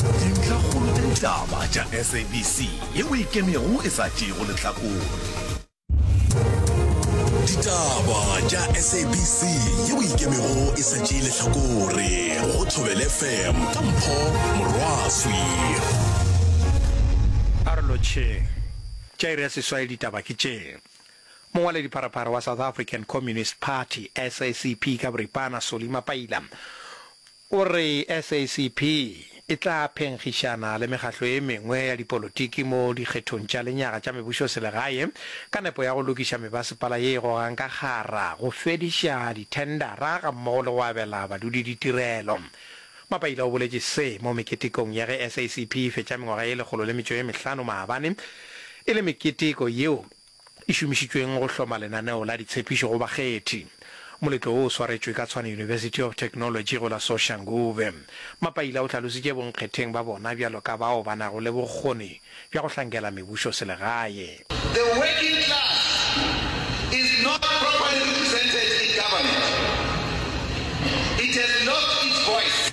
Dintlhakgolo tša ditaba tša SABC ye o ikemego e sa tšeego lehlakore. Ditaba tša SABC ye o ikemego e sa tšee lehlakore go Thobele FM ka Mpho Morwaswi. Karolo tše tša iri ya seswai ditaba ke tše. Mongwaladipharapara wa South African Communist Party, SACP ka boripana, Solly Mapaila, O re SACP e tla phenkgišana le mekgatlo e mengwe ya dipolotiki mo dikgethong tša lenyaga tša mebusoselegae ka nepo ya go lokiša mebasepala ye e gogang ka kgara, go fediša dithendara gammogo le go abela badudi ditirelo. Mapaila o boletše se mo meketekong ya ge SACP e fetša mengwaga ye lekgolo le metšo ye mehlano maabane e le meketeko yeo E šomišitšweng go hloma lenaneo la ditshepišo go bakgethi. Moletlo wo o swaretšwe ka Tshwane University of Technology go la Soshanguve. Mapaila o hlalositše bonkgetheng ba bona bjalo ka bao ba nago le bokgoni bja go hlankela mebušo selegae. The working class is not properly represented in government. It has lost its voice.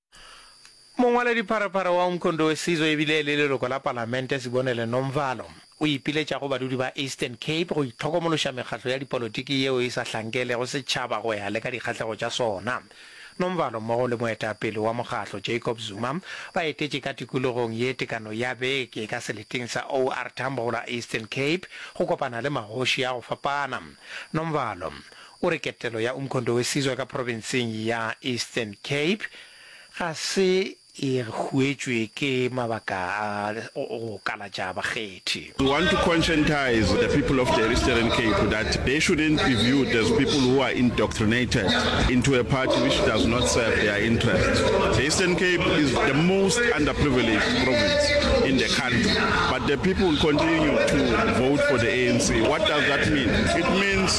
Mongwaladipharephare wa Umkhonto Wesizwe e bile e le leloko la Palamente Sibonele Nomvalo o ipiletša go badudi ba Eastern Cape go itlhokomološa mekgatlo ya dipolotiki yeo e sa hlankelego setšhaba go ya le ka dikgahlego tša sona. Nomvalo mmogo le moetapele wa mokgatlo Jacob Zuma ba etetše ka tikologong ye tekano ya beke ka seleteng sa OR Tambo la Eastern Cape go kopana le magoši a go fapana. Nomvalo o re ketelo ya Umkhonto we Sizwe ka profenseng ya Eastern Cape ga se e huetšwe ke mabaka a go kalatša bakgethi. We want to conscientize the people of the Eastern Cape that they shouldn't be viewed as people who are indoctrinated into a party which does not serve their interests. The Eastern Cape is the most underprivileged province in the country but the people continue to vote for the ANC. What does that mean? It means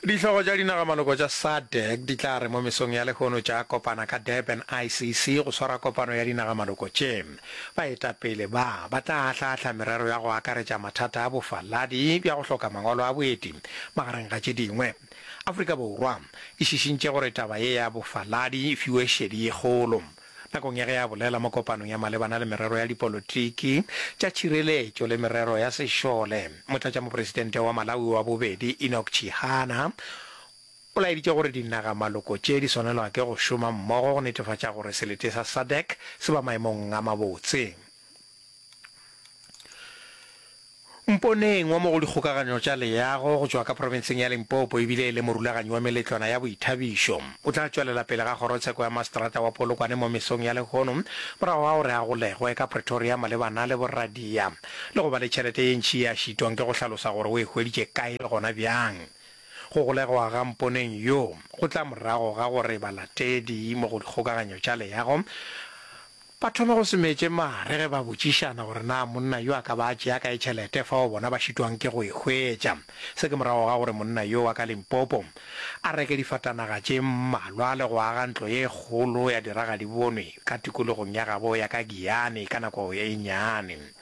Dihlogo tša dinaga-maloko tša SADC di tla re mo mesong ya lehono tša kopana ka Durban, ICC, go swara kopano ya dinaga-maloko tše. Baetapele ba, ba tla ahla-ahla merero ya go akaretša mathata a bofaladi bja go hloka mangwalo a boeti, magareng ga tše dingwe. Afrika Borwa e šišintše gore taba ye ya bofaladi e fiwe šedi ye kgolo. Nakong ya ge a bolela mo kopanong ya malebana le merero ya dipolotiki, tša tšhireletšo le merero ya sešole, Motlatšamopresidente wa Malawi wa bobedi, Enoch Chihana, o laeditše gore dinaga maloko tše di swanelwa ke go šoma mmogo go netefatša gore selete sa SADC se ba maemong a mabotse. Mponeng wa mo go Dikgokagano tša Leago go tšwa ka profenseng ya Limpopo e bile e le morulaganyi wa meletlwana ya boithabišo. O tla tšwelela pele ga kgorotsheko ya maseterata wa Polokwane mo mesong ya lehono morago ga gore a golegwe ka Pretoria malebana le boradia le go ba le tšhelete ye ntši ye a šitwang ke go hlalosa gore o e hweditše kae le gona bjang. Go golegwa ga Mponeng yo go tla morago ga gore balatedi mo go Dikgokagano tša Leago Ba thoma go se metše mare ge ba botšišana gore na monna yo a ka ba a tšea kae tšhelete fao bona ba šitwang ke go e hwetša. Se ke morago ga gore monna yo wa ka Limpopo a reke difatanaga tše mmalwa le go aga ntlo ye kgolo ya diragadibonwe ka tikologong ya gabo ya ka Giyani ka nako e nnyane.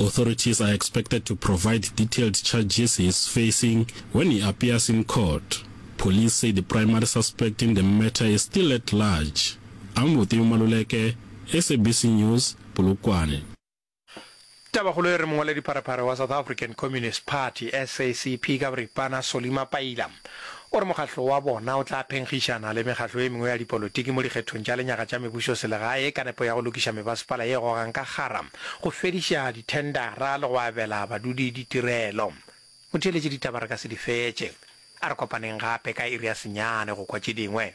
Authorities are expected to provide detailed charges he is facing when he appears in court. Police say the primary suspect in the matter is still at large. Ambutiu Maluleke, SABC News, Polokwane. Tabakgolo e re mongwaladipharephare wa South African Communist Party, SACP, ka boripana Solly Mapaila o re mokgahlo wa bona o tla phenkgišana le mekgahlo e mengwe ya dipolotiki mo dikgethong tša lenyaga tša mebušoselegae ka nepo ya go lokiša mebasepala ye gogang ka kgara. go fediša dithendara le go abela badudi ditirelo. O theeletše ditaba re ka se di fetše. A re kopaneng gape ka iri ya senyane go kwa tše dingwe.